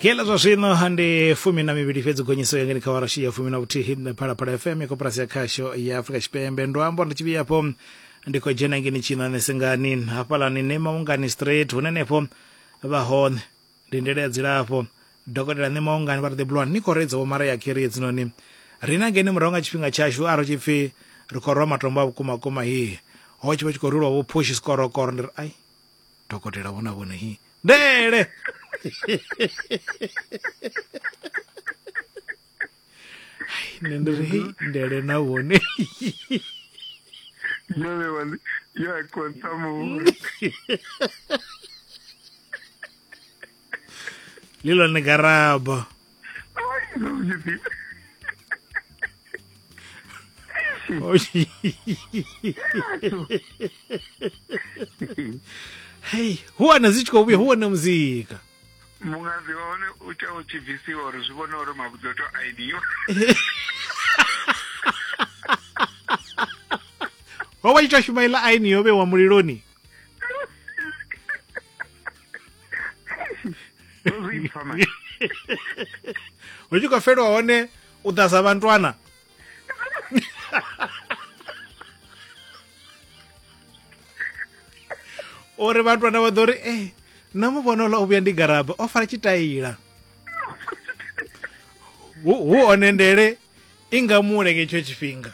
kela zwa zwino ndi fumi na mivhili fhedzi gonyiso yangeni kha warashi ya fumi na vhuthihi phalaphala fm ya koporasi ya khasho ya afrika tshipembe ndo amba ndi tshivhiyapo ndi khou dzhena ngeni tshinane sengani hafhalani ne maungani straight hune nefho vha hone ndi ndele ya dzilafho dokotela ne maungani vha ri the blond ni khou reidza vho mara ya khiri hedzinoni rina ngeni murahu nga tshifhinga tshashu a ro tshi pfi ri khou rwa matombo a vhukuma kuma hihi ho tshi vha tshi khou rulwa vho phushi sikorokoro ndi ri ai dokotela vhona vhone hi ndele nṋe ndi ri hei ndele na vhone ndele wani ya konta muhulu le lone karabo hei hu wana zwi tshi khou vhuya hu wana muzika mungadzi wa hone u tea u tshi bvisiwa uri zwi vhone uri mavhudzi o to aidiwa wa wa ita shuma ila aini yo vhewa muliloni zwipfa mani hu tshi khou felwa hone u ḓa sa vhantwana uri vhantwana vha ḓo ri e na mu vhona ola u vhuya ndi garaba o fara tshitaila hu one ndele i nga mu lenge itsho tshifhinga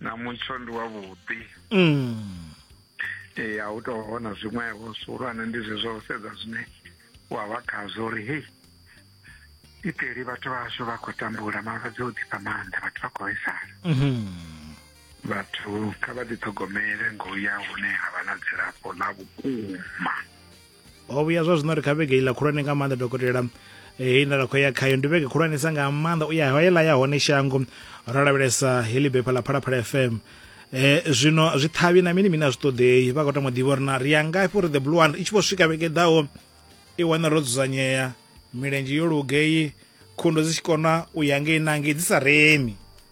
na mutsho ndi wavhuḓi mm. ee a u tou hona zwiṅwevho zwihulwane ndi zwezwo u sedza zwine wa vha khazwo uri hei iteli vhathu vhashu vha khou tambula malwadze o ḓifha maanḓa vhathu vha khou vhaisala mm-hmm. vhathu kha vha ḓiṱhogomele ngo ya hune ha vha na dzilafho ḽa vhukuma ho vhuya zwa zwino ri kha vhege iḽa khulwane nga maanḓa dokotela hei nda ra khou ya khayo ndi vhege khulwanesa nga maanḓa u ya hoela ya hone shango ro lavhelesa heḽi bepha ḽa phalaphala fm eh zwino zwi ṱhavhi na mini mini a zwi ṱoḓei vha khou tama ḓivha uri na ri ya ngafhi uri the blue one i tshi vho swika vhege ḓaho i wana ro dzudzanyea milenzhe yo lugei khundo dzi tshi kona u ya ngei na ngei dzi sa remi